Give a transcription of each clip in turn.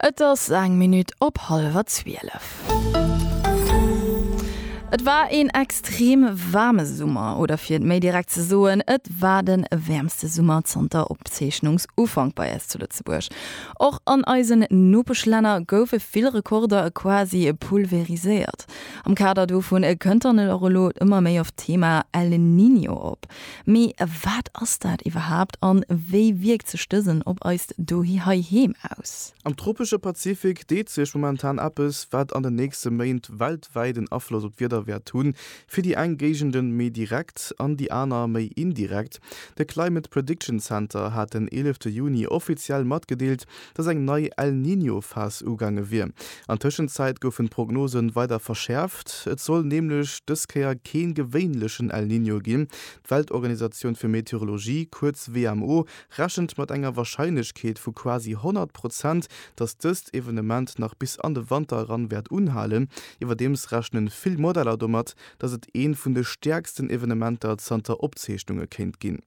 Et ass eng Minutt op hallwer 12. Et war een extrem waarme Summer, oder fir et méi direkt ze soen, et war den wäermste Summer zanter Opzeechnungsufank bei eis zu Lëtzebuerg. Och an eisen Nopeschlänner goufe vill Rekorder quasi pulveriséiert. Am Kader dovun kënnt dann och elo ëmmer méi oft d'Thema El Niño op. Mee wat ass dat iwwerhaapt an wéi wierkt sech dësen op eist Dohi heiheem aus? Am tropesche Pazifik deet sech momentan eppes, wat an den nächste Méint weltwäit en Afloss op d'Wieder wäert hunn, fir déi eng Géigenden méi direkt an déi aner méi indirekt. De Climate Prediction Center hat den 11 Juni offiziell matgedeelt, dass eng nei El Niño Phas ugaange wier. An Tëschenzäit goufen d'Prognosen weider verschäerft. Et soll nämlech dës Kéier keen gewéinlechen El Niño ginn. D'Weltorganisatioun fir Meteorologie, kuerz WMO, rechent mat enger Warscheinlechkeet vu quasi 100 Prozent, dass dëst Evenement nach bis an de Wanter eran wäert unhalen. Iwwerdeems rechnen vill Modeller domat, dass et een vun de stäerksten Evenementer zanter Opzeechnunge kéint ginn.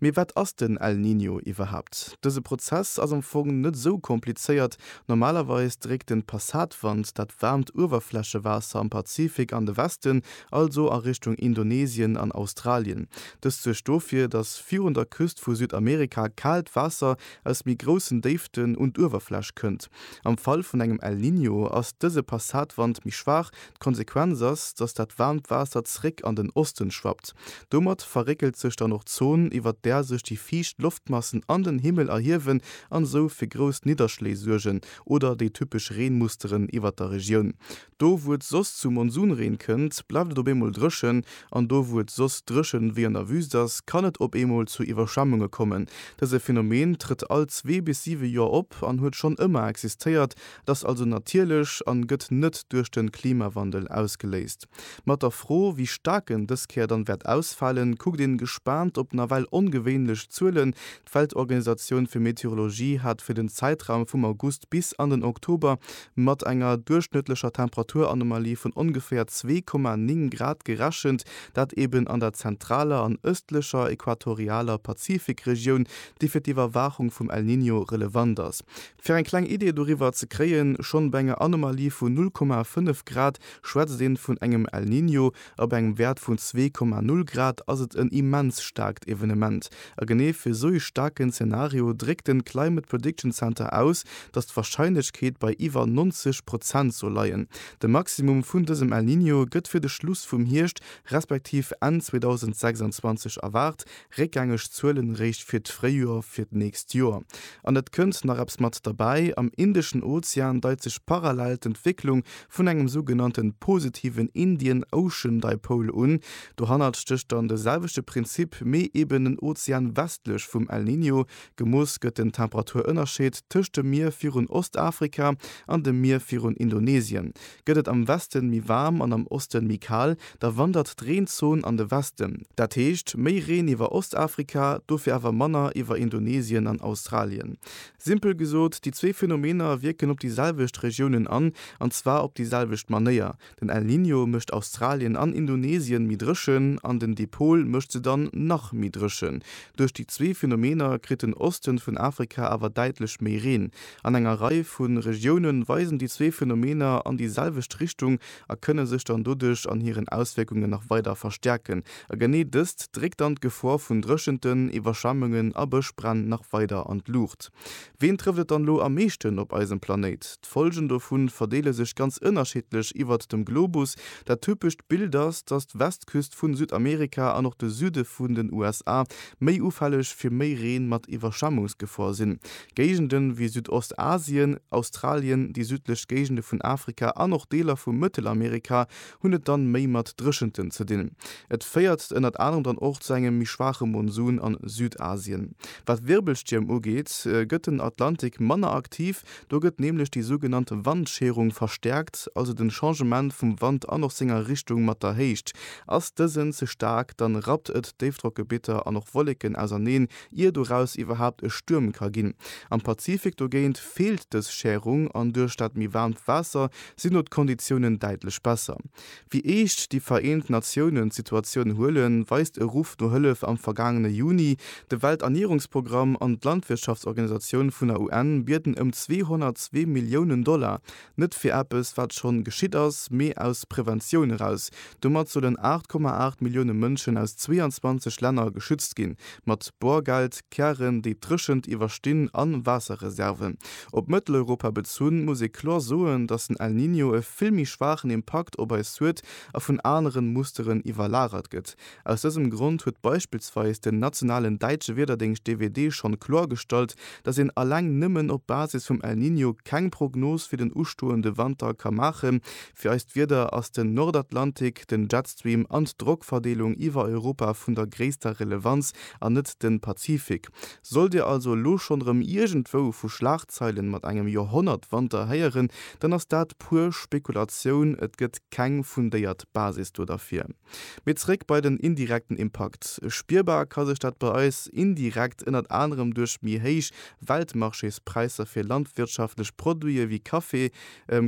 Mee wat ass den El Niño iwwerhaapt? Dëse Prozess ass am Fong net esou komplizéiert. Normalerweis dréckt den Passatwand dat waarmt Uewerflächewaasser am Pazifik an de Westen, also a Richtung Indonesien an Australien. Dëst suergt dofir, datt virun der Küst vu Südamerika kaalt Waasser aus méi groussen Déiften un d'Uewerfläch kënnt. Am Fall vun engem El Niño ass dëse Passatwand méi schwaach, D'Konsequenz ass, dass dat waarmt Waasser zréck an den Osten schwappt. Domat verréckelt sech dann och d'Zon, iwwert där sech déi fiicht Loftmassen an den Himmel erhiewen an esou fir grouss Nidderschléi suergen oder déi typesch Reenmusteren iwwert der Regioun. Do, wou et soss zu Monsunreen kënnt, bleift et op eemol dréchen an do, wou et soss dréchen wéi an der Wüst ass, kann et op eemol zu Iwwerschwemmunge kommen. Dëse Phänomen trëtt all zwee bis siwe Joer op an huet schonn ëmmer existéiert Et ass also natierlech an gëtt net duerch den Klimawandel ausgeléist. Mat der Fro, wéi staark en dës Kéier dann wäert ausfalen, kuckt een gespaant op nawell ongewéinlech Zuelen. D'Weltorganisatioun fir Meteorologie hat fir den Zäitraum vum August bis an den Oktober mat enger duerchschnëttlecher Temperaturanomalie vun ongeféier 2,9 Grad gerechent, dat eben an der zentraler an ëstlecher equatorialer Pazifikregioun, déi fir d'Iwwerwaachung vum El Niño relevant ass. Fir eng kleng Idee doriwwer ze kréien, Schonn bei enger Anomalie vun 0,5 Grad schwätzt een vun engem El Niño, a bei engem Wäert vun 2,0 Grad ass et en immens staarkt Evenement. A genee fir esou ee staarken Zenario dréckt den Climate Prediction Center aus, datt d'Warscheinlechkeet bei iwwer 90 Prozent soll leien. De Maximum vun dësem El Niño gëtt fir de Schluss vum Hierscht respektiv Enn 2026 erwaart, Réckgängeg Zuelen eréischt fir d'Fréijoer fir d'nächst Joer. An et kënnt nach eppes mat derbäi, Am Indeschen Ozean deit sech parallel d'Entwécklung vun engem sougenannte positiven Indian Ocean Dipole un. Dohannert stécht dann de selwechte Prinzip, mee eben en Ozean westlech vum El Niño. Gemooss gëtt den Temperaturënnerscheed tëscht dem Mier virun Ostafrika an dem Mier virun Indonesien. Gëtt et am Westen méi waarm an am Osten méi kal, da wandert d'Reenzon an de Westen. Dat heescht, méi Reen iwwer Ostafrika, dofir awer manner iwwer Indonesien an Australien. Simpel gesot, déi zwee Phänomener wierken op déi selwecht Regiounen an, an zwar op déi selwecht Manéier, den El Niño mécht Australien an Indonesien méi dréchen an den Dipol mécht se dann nach méi dréchen. Duerch déi zwee Phänomener kritt den Osten vun Afrika awer däitlech méi Reen. An enger Rei vu Regioune weisen déi zwee Phenomener an déi selwecht Richtung a kënne sech dann doduerch an hiren Auswierkungen nach weider verstäerken. A genee dëst dréckt dann d'Gefor vun Dréchenten, Iwwerschwemmungen a Bëschbränn nach weider an d'Luucht. Ween trëfft et dann elo am meeschten op eisem Planéit? D'Follgen dovu verdeele sech ganz ënnerschiddlech iwwert dem Globus. Dat typescht Bild ass, datt d'Westküst vu Südamerika an och de Süde vun den USA méi ufälleg fir méi Reen mat Iwwerschwemmungsgefor sinn. Géigende wéi Südostasien, Australien, déi südlech Géigende vun Afrika an och Deeler vu Mëttelamerika hunn et dann méi mat Dréchenten ze dinn. Et féiert ënnert anerem dann och zu engem méi schwaache Monsun an Südasien. Wat Wirbelstierm ugeet, gëtt den Atlantik manner aktiv. Do gëtt nämlech déi sougenannt Wandscherung verstäerkt, also den Changement vum Wand an och senger Richtung mat der Héicht. Ass dësen ze staark, dann rappt et Déifdrockgebitter an och Wolleken auserneen, ier doraus iwwerhaapt e Stuerm ka ginn. Am Pazifik dogéint feelt dës Schärung an duerch dat méi waarmt Waasser sinn do d'Konditiounen däitlech besser. Wéi eescht déi Vereent Natiounen d'Situatioun huelen, weist e Ruff no Hëllef am vergaangene Juni. De Welternierungsprogramm an d'Landwirtschaftsorganisatioun vun der UN bieden ëm 202 Milliounen Dollar Net fir eppes, wat schonn geschitt ass, mee aus Preventioun eraus. Domat sollen 8,8 Millioune Mënschen aus 22 Länner geschützt ginn, mat Borgeld, Kären, déi d'Dréchent iwwerstinn, a Waasserreserven. Op Mëtteleuropa bezunn, muss ee kloer soen, datt den El Niño e vill méi schwaachen Impakt op eis huet a vun aneren Musteren iwwerlagert gëtt, Aus dësem Grond huet beispillsweis den nationalen däitsche Wiederdéngscht DWD schonn kloergestallt, datt een alleng nëmmen op Basis vum El Niño keng Prognos fir den ustoende Wanter ka maachen. Fir eist Wieder ass den Nordatlantik, den Jetstream an d'Drockverdeelung iwwer Europa vun der gréisster Relevanz an net den Pazifik. Sollt Dir also elo schonn erëm iergendwou vu Schlagzeilen mat engem Joerhonnertwanter héieren, dann ass dat puer Spekulatioun, et gëtt keng fundéiert Basis do derfir. Mee zréck bei den indirekten Impakt. Spierbar ka sech dat bei eis indirekt ënnert anerem duerch méi héich Weltmarchéspräisser fir landwirtschaftlech Produite wéi Kaffi,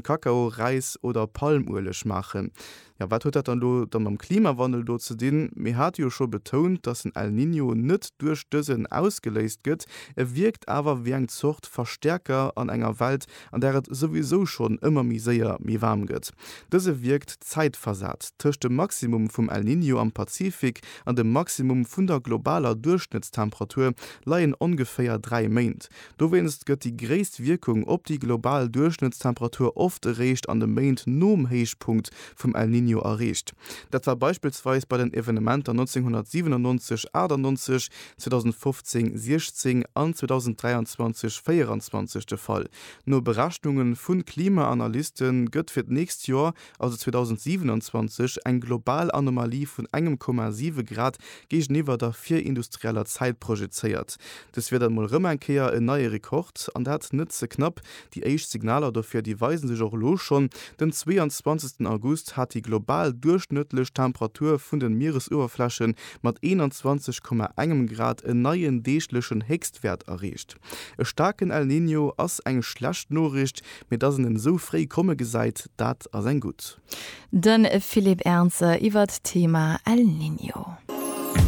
Kakao, Räis oder Palmueleg maachen. Jo, wat huet dat dann elo da mam Klimawandel do ze dinn? Mir hate jo scho betount, dass den El Niño net duerch dësen ausgeléist gëtt, e wierkt awer wéi eng Zort Verstäerker an enger Welt, an där et souwisou schonn ëmmer méi séier méi waarm gëtt. Dëse wierkt zäitversat tëscht dem Maximum vum El Niño am Pazifik an dem Maximum vun der globaler Duerchschnëttstemperatur leien ongeféier dräi Méint. Dowéinst gëtt déi gréisst Wierkung op déi global Duerchschnëttstemperatur oft eréischt an de Méint nom Héichpunkt vum El Niño erreecht. Dat war beispillsweis bei den Evenementer 1997, 98, 2015 16 an 2023 24 de Fall. No Berechnunge vu Klimaanalyste gëtt fir d'nächst Joer, also 2027, eng global Anomalie vun engem Komma siwe Grad géigeniwwer der virindustrieller Zäit projezéiert. Dës wier dann mol rëm eng Kéier en neie Rekord, an dat net ze knapp, Déi éischt Signaler dofir, déi weise sech och elo schonn. Den 22 August hat déi global duerchschnëttlech Temperatur vun den Mieresuewerfläche mat 21, engem Grad en neien deeglechen Héchstwäert erreecht. E staarken El Niño ass eng schlecht Noriicht, mee dass en en esou fréi komme gesäit, dat ass eng gutt. De Philippe Ernzer iwwert d'Thema El Niño.